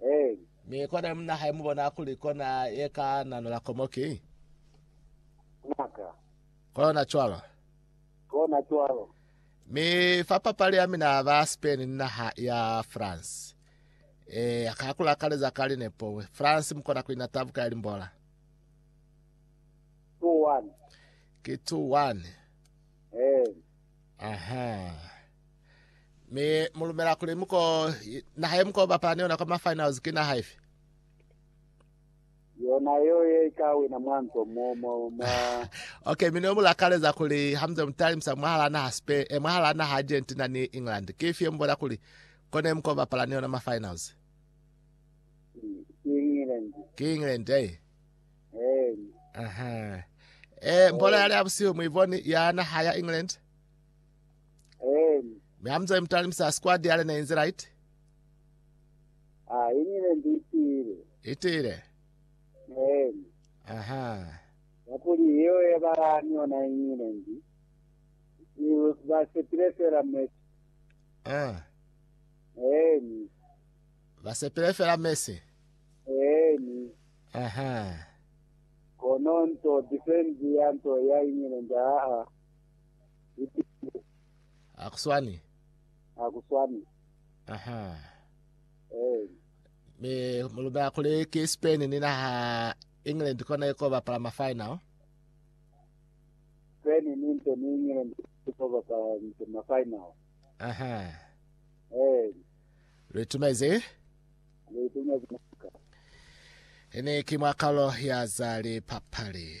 Eeli. Mi kona munna hae mubona kuli kona ye ka nanula komo ki. Ngaka. Kona cwalo. Kona cwalo. Mi fa papali ya mina ba Spain ni naha ya France. E, ka kulakaleza ka linepo. France mukona ku ina tabuka ya limbola. 2-1. Ki 2-1. Eeli. Aha. Mi mu lumela kuli muko i- naha ye muko bapala ni yona kwa ma finals ki naha ifi? Yona yeo ye i ka wina mwanzo mo, mo, mwa, Okay, mi ne mu lakaleza kuli ha muze mu talimisa mwahala naha Spain, eh, mwahala naha Argentina ni England. Ki ifi ye mu bona kuli kone muko bapala ni yona ma finals? ki England. Ki England, eh. Ehe. Eh, mpola yale ya busihu muiboni yana haya England. Mi amzali mutalimisa squad yale na inze right. Ah, England itile. Itile. Aha. Nakuli hiyo ya balani ona England. Ni basepile fela Messi. Ah. Eh. Basepile fela Messi. Eh. Ahaa. Kono nto defense ya nto ya iñile nja aa ipilile. Akuswani. Akuswani. Ahaa. Eeni. Me mulume akule ke Spain ni naha England kona iko bapala ma final. Spain ni nto ni England iko bapala nto ma final. Ahaa. Eeni. Retumeze. Hene ki mwa kalo ya za lipapali.